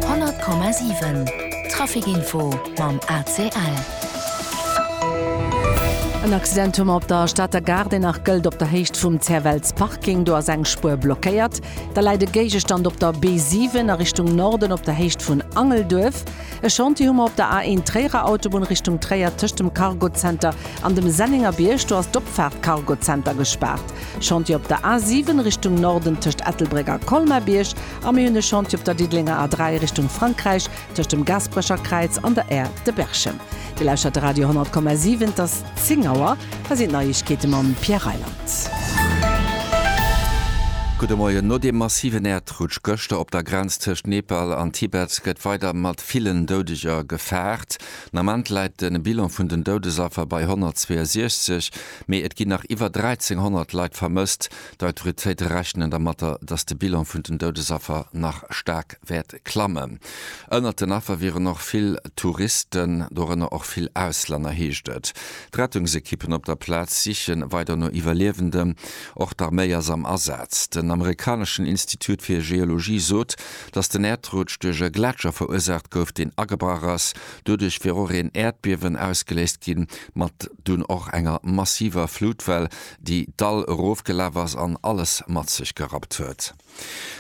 100,7 Trafic-Info mam ACL. En Accident hu mer op der Stater Gare, deen nach gëllt op der Héicht vum Zerwells Parking. Do ass eng Spuer blockéiert. Da läit e Géigestand op der B7 a Richtung Norden op der Héicht vun Angelduerf. E Chantier hu mer op der A1 Tréierer Autobunn Richtung Tréier tëscht dem Cargo Center An dem Sennengerbierg, do ass d'Opfaart Cargozenter gespaart. Chantier op der A7 Richtung Norden tëscht Ettelbréck a Colmar-Bierg a mir hunn e Chantier op der Diddelenger A3 Richtung Frankräich tëscht dem Gaasperecherkräiz an der Aire de Berchem. Dir lauschtert de Radio 10,7. Et ass 10 Auer. Hei sinn d'Neiegkeete mam Pierre Reyland. Gudde Moien. No deem massiven Äerdrutsch gëschter op der Grenz tëscht Nepal an Tibet gëtt weider mat villen Doudeger gefaart. Den Ament läit de Bilan vun den Doudesaffer bei 162, mee et ginn nach iwwer 1.300 Leit vermësst. D'Autoritéite rechnen dermat, datt de Bilan vun den Doudesaffer nach staark wäert klammen. Ënnert den Affer wieren och vill Touristen, dorënner och vill Auslänner, heescht et. D'Rettungsekippen op der Plaz siche weider no Iwwerliewenden. Och d'Arméi ass am Asaz. Den amerikaneschen Institut fir Geologie sot, dass den Äerdrutsch duerch e Gletscher verursaacht gouf, deen agebrach ass, doduerch wier och een Äerdbiewen ausgeléist ginn, mat dunn och enger massiver Flutwell, déi d'Dall erofgelaf ass an alles mat sech gerappt huet.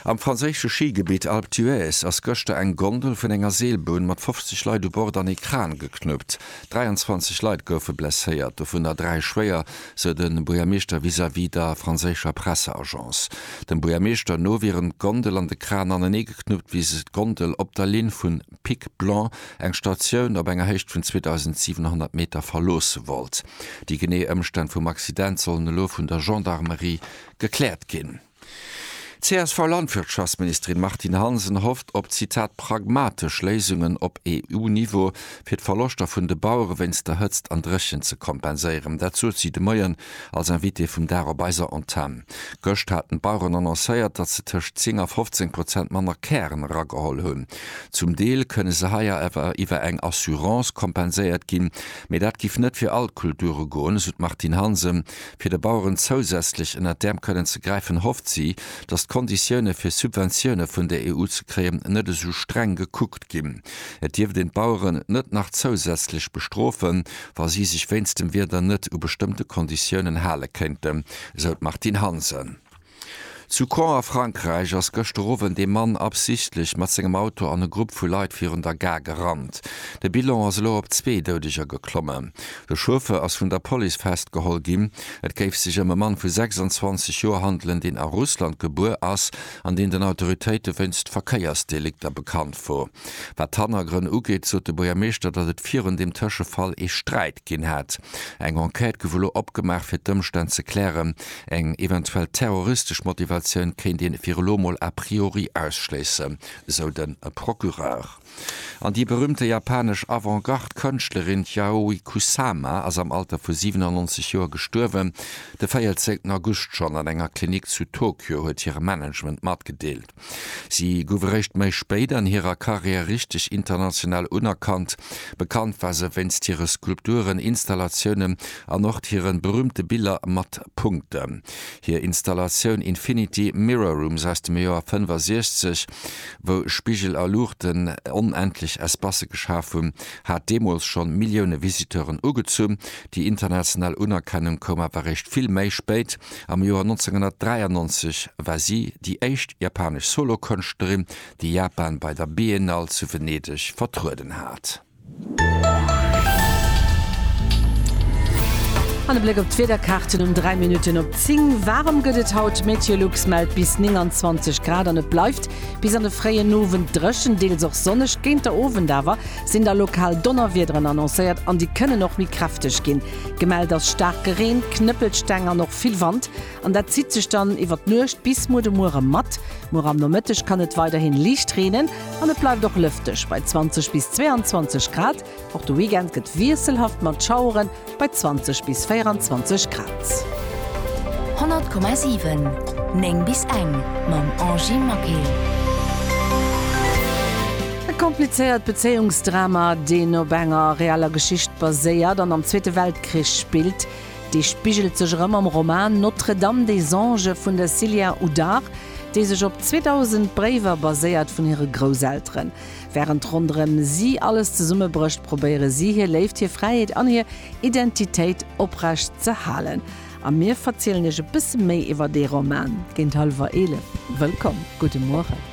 Am franséische Schigebitt Alpe d'Huez ass gëschter eng Gondel vun enger Seelbunn mat 50 Leit u Bord an ee Kran geknuppt. 23 Leit goufe blesséiert, dovunner dräi schwéier. sou de Buergermeeschter vis-à-vis der franséischer Presseagence. Dem Buergermeeschter no wieren d'Gondel an de Kran anenee geknuppt, wéi sech d'Gondel op der Linn vun Pic Blanc, eng Statioun op enger Héicht vun 2.700 Meter, verloosse wollt. Déi genee Ëmstänn vum Accident sollen elo vun der Gendarmerie gekläert ginn. D'CSV-Landwirtschaftsministerin Martine Hansen hofft op Zitat pragmatesch Léisungen op EU-Niveau, fir d'Verloschter vun de Bauere wéinst der Hëtzt an Dréchent ze kompenséieren. Dat sot si de Moien als Invitée vum Dag op eiser Antenn. Gëscht haten d'Baueren annoncéiert, datt se tëscht 10 a 15 Prozent manner Kären erageholl hunn. Zum Deel kënne se hei awer iwwer eng Assurance kompenséiert ginn, mee dat giff net fir all d'Kulture goen, esou d'Martine Hansen. Fir de Baueren zousätzlech ënnert d'Äerm kënnen ze gräifen, hofft si, datt d'Konditioune fir Subventioune vun der EU ze kréien, net esou streng gekuckt ginn. Et dierft een d'Baueren net nach zousätzlech bestrofen, wa si sech wéinst dem Wieder net u bestëmmte Konditiounen hale kéinten, esou d'Martine Hansen. Zu Caen a Frankräich ass gëschter Owend ee Mann absichtlech mat sengem Auto an e Grupp vu Leit virun der Gare gerannt. De Bilan ass elo op zwee Doudeger geklommen. De Chauffeur ass vun der Police festgeholl ginn. Et géif sech ëm e Mann vu 26 Joer handelen, deen a Russland gebuer ass an deen den Autoritéite wéinst Verkéiersdelikter bekannt wor. Wat d'Hannergrënn ugeet, sot de Buergermeeschter, datt et virun deem Tëschefall ee Sträit. Ginn hat. Eng Enquête gouf elo opgemaach fir d'Ëmstänn ze klären. Eng eventuell terroristesch Motivatioun kéint een fir elo mol a priori ausschléissen, esou de Procureur. An déi berüümte japanesch Avant-Garde Kënschtlerin Yayoi Kusama ass am Alter vu 97 Joer gestuerwen. De 14 August schonn an enger Klinik zu Tokio, huet hire Management matgedeelt. Si gouf eréischt méi spéit an hirer Karriär richteg international unerkannt. Bekannt war se wéinst hire Skulpturen, Installatiounen an och hiren berüümte Biller mat Punkten. Hir Installatioun Infinity Mirror Rooms aus dem Joer 65, wou Spigel a Luuchten onendlech Espace geschaf hunn, hat deemools schonn Millioune Visiteuren ugezunn. Déi international Unerkennung koum awer eréischt vill méi spéit, Am Joer 1993 war si déi éischt japanesch Solokënschtlerin, déi Japan bei der Biennale zu Venedeg vertrueden hat. An e Bléck op d'Wiederkaarten um 3 Minutten op 10. Waarem gëtt et haut? Meteolux mellt bis 29 Grad an et bleift bis an de fréien Owend dréchen, deels och sonneg. Géint der Owend awer sinn da lokal Donnerwiederen annoncéiert an déi kënnen och méi kräfteg ginn. Gemellt ass staarke Reen, Knëppelsteng an och vill Wand an dat zitt sech dann iwwer d'Nuecht bis muer de Muere mat. Muer am Nomëtteg kann et weiderhin liicht reenen an et bleift och lëfteg bei 20 bis 22 Grad. Och de Weekend gëtt wiesselhaft mat Schaueren bei 20 bis 24 Grad. 100,7 9 bis eng mam Angy Maquet. E komplizéiert Bezéiungsdrama, deen op enger reeller Geschicht baséiert an am Zweete Weltkrich spillt. Dee spigelt sech erëm am Roman Notre-Dame des Anges vun der Sylien Houdart, dee sech op 2000 Bréiwer baséiert vun hire Grousselteren. Wärend ronderëm si alles zesummebrécht, probéiere si hir Léift, hir Fräiheet an hir Identitéit oprecht ze halen. A mir verzielen Iech e bësse méi iwwer dee Roman géint hallwer eelef. Wëllkomm, gudde Mueren.